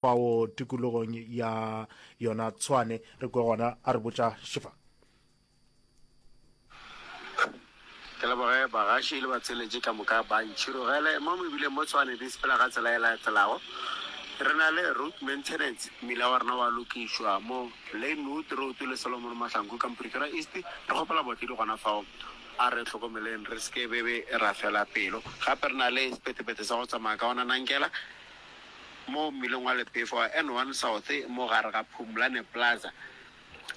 Fao tikologong ya yona Tshwane, re kwe gona a re botša Shifa. Ke leboge bagaši le batsweletši ka moka ba ntšhirogele mo mebileng mo Tshwane di sepela ka tsela e latelago. Re na le road maintenance, mmila wa rena wa lokišwa mo Lanewood Road le Solomon Mahlangu ka mo Pretoria East. Re kgopela baotledi gona fao a re hlokomeleng re se ke be be ra fela pelo. Gape re na le sepetepete sa go tsamaya ka ona Nankela. mo mmileng wa Lepefo wa N one South mo gare ga Phumlane Plaza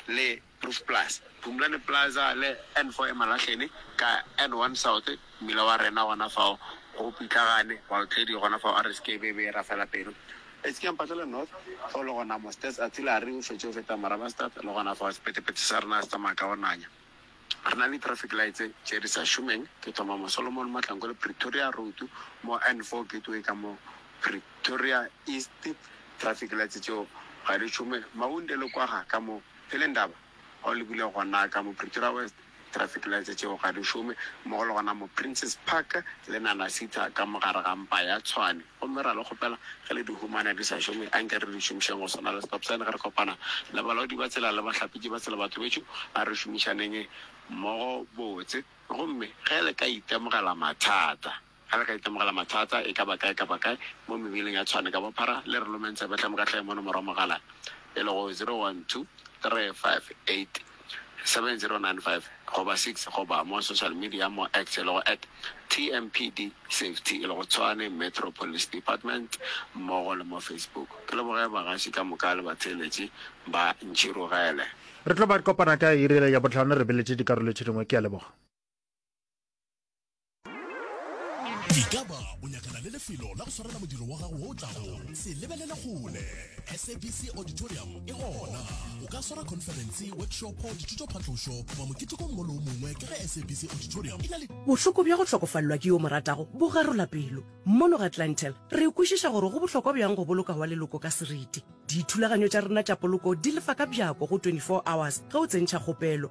le Proof Plus. Phumlane Plaza le N four e Malahleni ka N one South, mmila wa rena gona fao go pitlagane baotledi gona fao are seke be be ra fela pelo. Etskeampatele North fao le gona mo Stats Artillery o fetše go feta Morabanstad le gona fao sephethephethe sa rena se tsamaya ka go nanya. Re na le di-traffic lights tše di sa šomeng, ke thoma mo Solomon Mahlangu le Pretoria Road, mo N four Gateway ka mo Pretoria East, traffic lights tšeo ga di šome, Maunde le Kwaga ka mo Pelindaba, ga o lebile gona ka mo Pretoria West, traffic lights tšeo ga di šome, mmogo le gona mo Princes Park le Nanasitha ka mo gare ga mpa ya Tshwane. Gomme ra le kgopela, ge le di humana di sa šome, anke re di šomišeng go swana le stop sign ge re kopana le balaodi ba tsela le bahlapetši ba tsela. Batho bešo, a re šomišaneng mmogo botse. Gomme ge le ka itemogela mathata, ge le ka itemogela mathata, e ka ba kae kapa kae, mo mebeleng ya tshwane ka bophara, le re lomeng tsebe hle moka hle mono morwa mogala, e lego 012358. 7095 goba 6 goba mo social media mo X e lego at TMPD Safety e lego Tshwane Metro Police Department mmogo le mo Facebook. Ke leboge bagaši ka moka le batheeletši ba Ntšhirogele. Re tlo ba kopana ka iri ya bohlano re beletše dikarolo tše dingwe. Ke a leboga. E ka ba o nyakana le lefelo la go swarela modiro wa gago o tlago. Se lebelele kgole. SABC Auditorium e gona. O ka swara khonferense, workshopo, dithutophatlošo goba moketekong mo le o mongwe ka ge SABC Auditorium e na le. Bohloko bja go hlokofalelwa ke yo o mo ratago bo garola pelo. Mono ga Clientele, re kwešiša gore go bohlokwa bjang go boloka wa leloko ka seriti. Dithulaganyo tša rena tša poloko di lefa ka bjako go 24 hours ge o tsentšha kgopelo.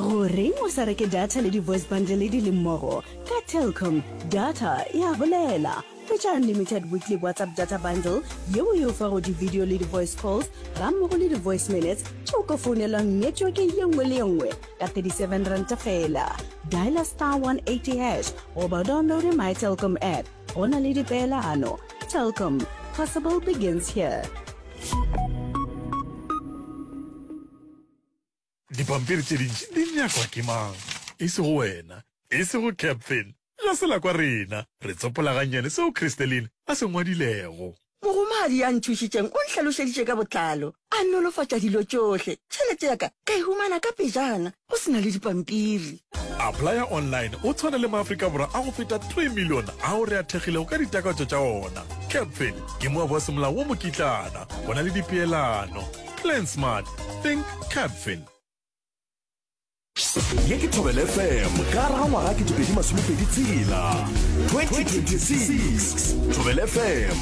Goreng o sa reke data le di-voice bundle di le mmogo? Ka Telkom, data e a bolela. Hwetša unlimited weekly WhatsApp data bundle yeo e o fago di-video le di-voice calls gammogo le di-voice minutes tše o ka founelwang networke ye nngwe le ye nngwe ka 37 ranta feela. Dialer star 180 hash goba o downloade My Telkom app. Go na le dipeelano. Telkom, possible begins here. Dipampiri tše dintši di nyakwa ke mang? E sego wena. E sego Captain. Ga se la kwa rena. Re tsopola gannyane seo Christeline a se ngwadilego. Mogomadi ya nthušitšeng o nhlalošeditše ka botlalo. A nolofatša dilo tšohle. Tšhelete ya ka ka e humana ka pejana, go se na le dipampiri. Applya online o tshwana le maAfrika Borwa a go feta 3 million ao re a thekgilego ka ditakatso tša ona. Capfin ke moabo wa semolao wo mokitlana. Go na le dipeelano. Plan smart. Think Capfin. Ye ke Thobela FM ka ra ngwaga 2026. Thobela FM.